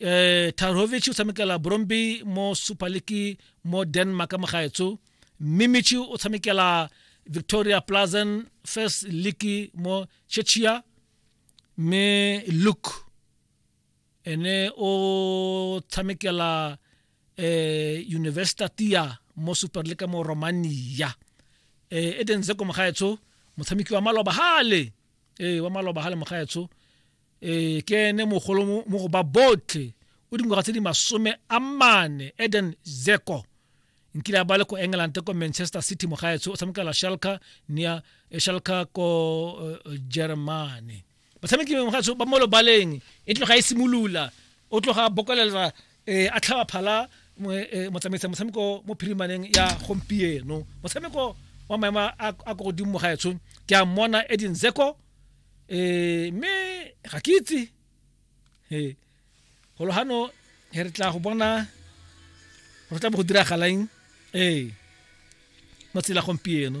eh Tarhovic o tshamekela Bromby mo Super League mo Denmark mo gaetso Mimichi o tshamekela Victoria Plazen First League mo Czechia me Luke ene o tshamekela eh Universitatia mo Super League mo Romania eh Eden Zeko mo gaetso motshameki wa maloba hale eh wa maloba hale mo gaetso ee ke ene mogolo mo go ba botlhe o dingwaga tse di masome a mane eden zeko nkile a ba le ko england ko manchester city mogaetsho o tshamekela shalka nia eh, shalka ko uh, germany batshameki mogaetsho ba mo lobaleng e tloga e simolola o tloga bokolela um a tlhaba phala motsamaisa motshameko mo phirimaneng ya gompieno motshameko wa maemo a ko godimo mogaetsho ke a mmona edin zeko eh me ga ke itse eh golo hano he re tla go bona go tla bo go diragalang eh mo tsela gompieno